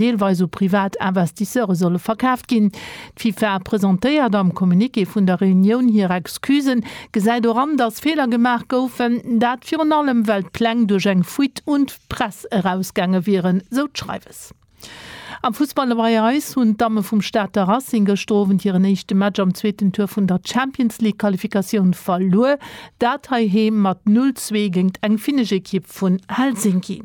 deelweis u privat Investisseure solle verkaaft ginn. D'FIFA presentéiert am Communiqué vun der Reunioun hir Excusen, gesäit och an, datt Feeler gemaach goufen, dat virun allem well d'Pläng duerch eng Fuite un d'Press erausgaange wieren, sou d'Schreiwes. Am Fussball bei eis hunn d'Damme vum Stater Racing gëschter Owend hiren éischte Match am zweeten Tour vun der Champions League Qualifikatioun verluer, dat heiheem mat 0, 2 géingt eng finnesch Ekipp vun Helsinki.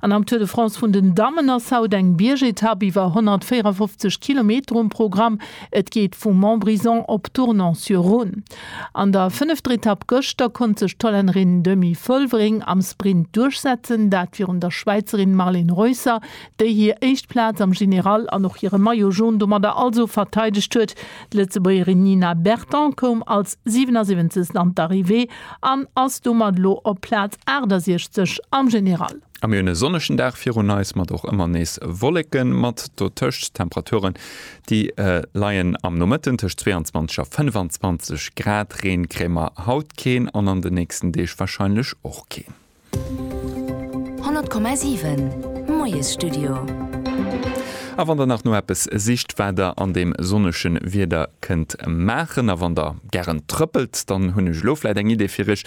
An am Tour de France vun den Dammen ass haut eng Biergetapp iwwer 154 Kilometer um Programm. Et geet vu Montbrison op Tournon-sur-Rhône. An der fënnefter Etapp gëschter konnt sech d'Hollännerin Demi Vollering am Sprint duerchsetzen, dat virun der Schwäizerin Marlen Reusser, déi hir éischt Plaz am General an och hire Maillot Jaune domadder also verteidegt huet. D'Lëtzebuergerin Nina Berton koum als 77. an d'Arrivée. An ass domat elo op Plaz 68 am General. A mir hunn e sonnegen Dag virun eis, mat och ëmmer nees Wolleke mat dotëscht. Temperaturen, déi leien am Nomëtten tëscht 22 a 25 Grad. Reen kréie mer haut keen an an de nächsten Deeg warscheinlech och keen. 100,7 Moiesstudio. A wann der nach no eppes sicht wat der an deem sonnege Wieder kënnt maachen, a wann der gären trëppelt, dann hunn ech elo vläit eng Idee fir iech.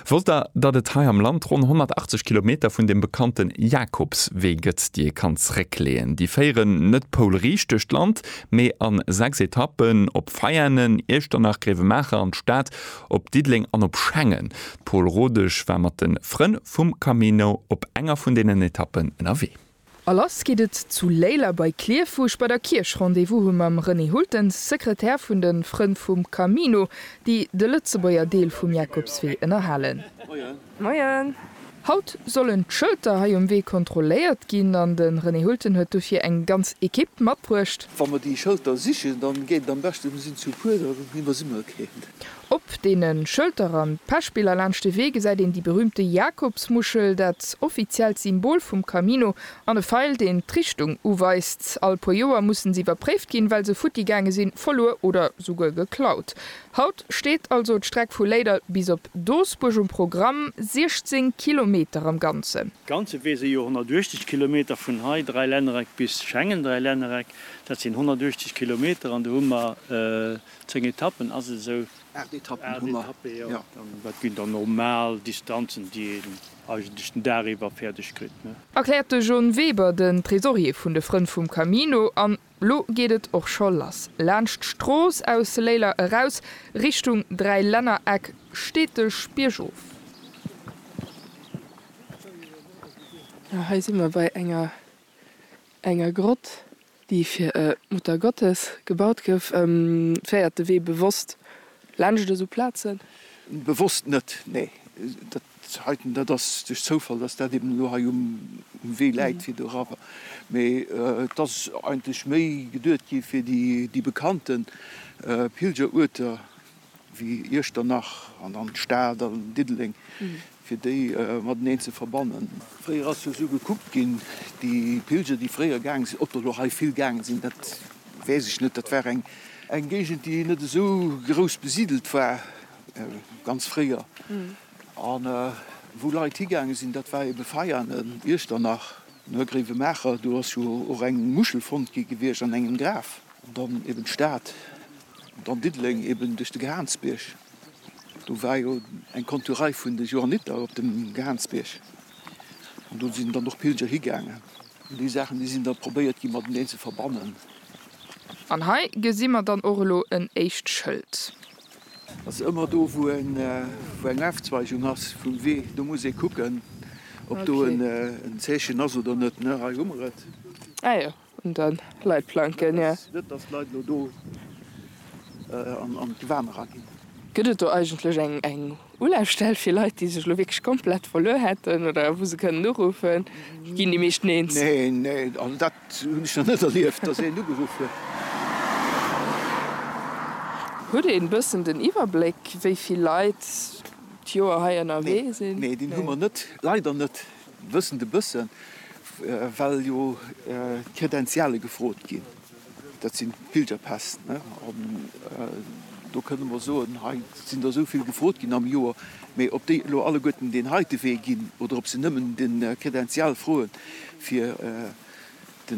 Wosst der, datt et hei am Land ronn 180 Kilometer vun deem bekannte Jakobswee gëtt, déi ee kann zréckleeën? Déi féieren net poulriicht duerch d'Land, mee a sechs Etappen op Veianen, Iechternach, Gréiwemaacher an d'Stad Op Diddeleng an op Schengen. D'Pol Rodesch war mat de Frënn vum Camino op enger vun deenen Etappen ënnerwee. A lass geet et zu Léiler bei Klierf, wou ech bei der Kierch Rendez-vous hu mam René Hultens, Sekretär vun de Frënn vum Camino, déi de Lëtzebuerger Deel vum Jakobswee ënnerhalen. Moien. Haut sollen d'Schëlter hei um Wee kontrolléiert ginn an de René Hulten huet dofir eng ganz Ekipp matbruecht. Wa mer déi Schëlter sichen, dann geet et am beschten, mir sinn zu puer, da iwwersi mer keen. Op deene Schëlter an Pechbiller laanscht de Wee gesäit een déi berüümte Jakobsmuschel, dat offiziellt Symbol vum Camino, an e Feil, deen d'Richtung uweist. All puer Joer mussen se iwwerpréift ginn, well se futti gaange sinn, verluer oder souguer geklaut. Haut steet also d'Streck vu Léidert bis op Doesbuerg um Programm, 16 Kilometer am Ganzen. Ganze Wee si jo 180 Kilometer, vun hei Dräilännereck bis Schengen, Dräilännereck, dat sinn 180 Kilometer an do hu mer 10 Etappen, ass et esou? Aacht Etappen hu mer, jo. An dat sinn dann normal Distanzen, déi een eigentlech den Dag iwwer fäerdeg kritt. Erkläert de John Weber, den Tresorier vun de Frënn vum Camino an Lo geet et och scho lass. Laanscht d'Strooss aus Léiler eraus, Richtung Dräilännereck, steteg biergof. A hei si mer bei enger enger Grott, déi fir e Muttergottes gebaut gouf. Féiert de Wee bewosst laanscht esou Plazen? Bewosst net, nee. Dat Heiten, dat ass duerch Zoufall, dass dat eben elo hei um Wee läit fir dorawer, mee et ass eigentlech méi geduet gi fir déi bekannte Pilgeruerter wéi Iechternach an dann d'Stad an Diddeleng, fir déi mateneen ze verbannen. Fréier ass jo esou gekuckt ginn, déi Pilger, déi fréier gaange sinn, ob der elo hei vill gaange sinn, dat weess ech net, dat war eng Géigend, déi net esou grouss besidelt war, ganz fréier an wou Leit higaange sinn, dat war ebe Veianen, Iechternach, Noergréiwemaacher, do ass jo och eng Muschel fonnt gi gewiescht an engem Graf an dann eben d'Stad an dann Diddeleng eben duerch de Gehaansbierg. Do war jo eng Konturei vun de Johanniter op dem Gehaansbierg an do sinn dann och Pilger higaangen an déi Saachen, déi sinn da probéiert gi mateneen ze verbannen. An hei gesi mer dann och elo en éischt Schëld. Also ëmmer do wou eng Aufzweigung ass vum Wee, do muss ee kucken ob do en Zeechen ass oder net. Ne, hei hu mer et. Ah jo, un de Leitplanken, jo. Net dass d'Leit elo do an d'Gewan eraginn. Gëtt et do eigentlech eng Ulafstell fir Leit déi sech elo wierklech komplett verluer hätten oder wou se kënnen uruffen? Ginn déi meeschten eens. Neen, neen, also dat Sou hunn ech nach net erlieft, dass een ugeruff huet. Hutt een bëssen den Iwwerbléck wéi vill Leit d'Joer hei ënnerwee sinn? Nee, deen hu mer net, leider net. Wëssen e bëssen, well jo d'Credentiale gefrot ginn, dat sinn d'Pilgerpäss, an do kënne mer soen, hei sinn der esou vill gefrot ginn am Joer, Mee ob déi elo alleguerten deen heite Wee ginn oder ob se nëmmen de Credential froe fir de